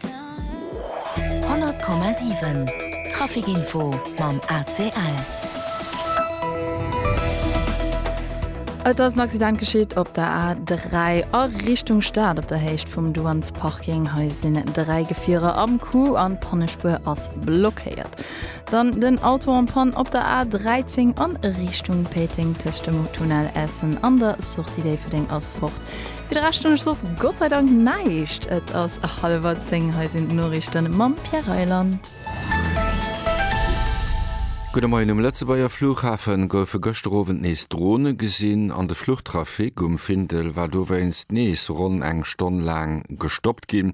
100,7 Trafic Info mam ACL. Et ass en Accident geschitt op der A3 a Richtung Stad op der Héicht vum Douanesparking. Hei sinn dräi Gefierer am Coup an d'Pannespuer ass blockéiert. Dann den Auto en panne op der A13 an Richtung Péiteng tëscht dem Tunnel Essen an der Sortie Déifferdeng ass fort. Fir de Rescht hunn ech soss Gott sei Dank näischt. Et ass hallwer zéng, hei sinn d'Noriichten mam Pierre Reyland. Gudde Moien, Um Lëtzebuerger Fluchhafe goufe gëschter Owend nees Drone gesinn an de Fluchtrafic um Findel war dowéinst nees ronn eng Stonn laang gestoppt ginn.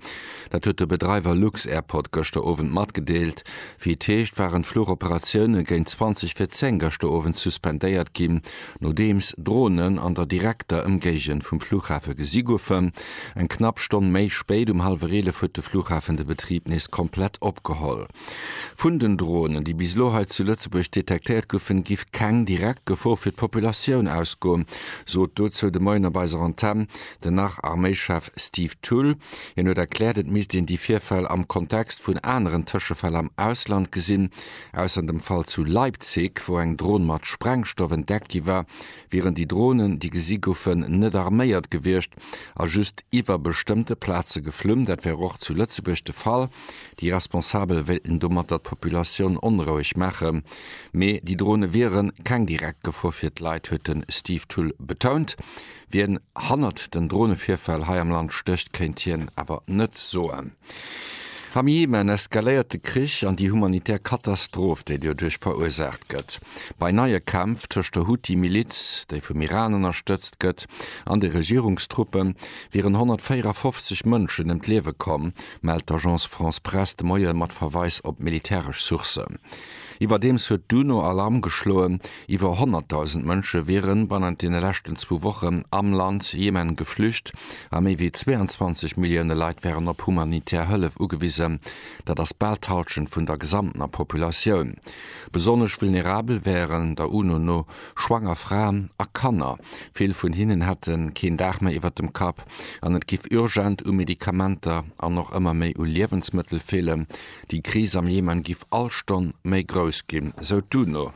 Dat huet de Bedreiwer lux-Airport gëschter Owend matgedeelt. Wéi et heescht, waren d'Fluchoperatioune géint 20 vir 10 gëschter Owend suspendéiert ginn Nodeems Dronen an der direkter Ëmgéigend vum Flughafe gesi goufen, eng knapp Stonn méi spéit, um hallwer 11, huet de Flughafen de Betrib nees komplett opgeholl. Vun den Dronen, déi bis elo hei zu Lëtzebuerg detektéiert goufen, giff keng direkt Gefor fir d'Populatioun ausgoen, sot dozou de Moien op eiser Antenn den Nach-Arméichef Steve Thull. Hien huet erkläert, et misst een déi Virfäll am Kontext vun aneren Tëschefäll am Ausland gesinn, Ausser dem Fall zu Leipzig, wou eng Dron mat Sprengstoff entdeckt gi war, wieren déi Dronen, déi gesi goufen, net arméiert gewiescht a just iwwer bestëmmte Plaze geflunn. Dat wär och zu Lëtzebuerg de Fall. Déi Responsabel wéilten domatter d'Populatioun onroueg maachen, mee déi Drone wiere keng direkt Gefor fir d'Leit, huet de Steve Thull betount. Wien hannert den Dronevirfäll hei am Land stécht, kéint hien awer net soen. Am Jemen eskaléiert de Krich an déi humanitär Katastroph, déi doduerch verursaacht gëtt. Bei neie Kämpf tëscht der Huthi-Miliz, déi vum Iran ënnerstëtzt gëtt, an de Regierungstruppe wieren 154 Mënschen ëm d'Liewe komm, mellt d'Agence France-Presse de Moie mat Verweis op militäresch Sourcen. Iwwerdeems huet d'UNO Alarm geschloen, Iwwer 100.000 Mënsche wiere bannent deene leschten zwou Wochen am Land Jemen geflücht a méi wéi 22 Millioune Leit wären op humanitär Hëllef ugewisen. Dat ass bal d'Hallschent vun der gesamtener Populatioun. Besonnesch vulnerabel wären, der UNO no, schwanger Fraen a Kanner. Vill vun hinnen hätte keen Daach méi iwwer dem Kapp an et géif urgent u Medikamenter an och ëmmer méi u Liewensmëttel feelen. Déi Kris am Jemen géif all Stonn méi grouss ginn, sou d'UNO.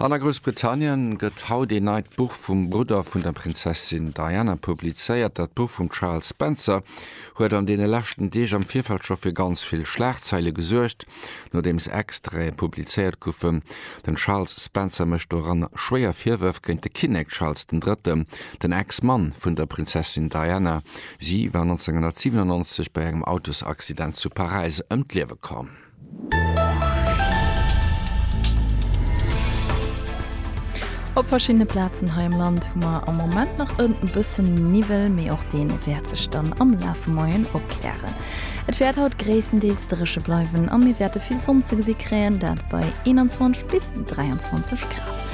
An a Groussbritannien gëtt haut een neit Buch vum Brudder vun der Prinzessin Diana publizéiert. Dat Buch vum Charles Spencer huet an deene leschten Deeg am Virfeld scho fir ganz vill Schlagzeile gesuergt, nodeems Extraite publizéiert goufen. Den Charles Spencer mécht doranner schwéier Virwërf géint de Kinnek Charles den Drëtten, den Ex-Mann vun der Prinzessin Diana. Si war 1997 bei engem Autosaccident zu Paräis ëm d'Liewe komm. Op verschiddene Plazen hei am Land hu mer am Moment nach e bësse Niwwel, mee och dee wäert sech dann am Laf vum Moien opklären. Et wäert haut gréisstendeels dréche bleiwen a mir wäerte vill Sonn ze gesi kréien, dat bei 21 bis 23 Grad.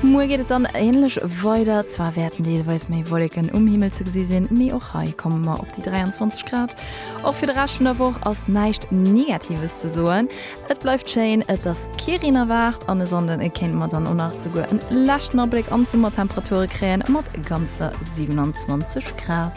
Muer geet et dann änlech weider, zwar wäerten deelweis méi Wolleken um Himmel ze gesi sinn, mee och hei komme mer op déi 23 Grad. Och fir de Rescht vun der Woch ass näischt Negatives ze soen. Et bleift schéin, et ass kee Reen erwaart an e Sonnde kéinte mer dann och nach esouguer en leschten Abléck an d'Summertemperature kréien, mat ganzer 27 Grad.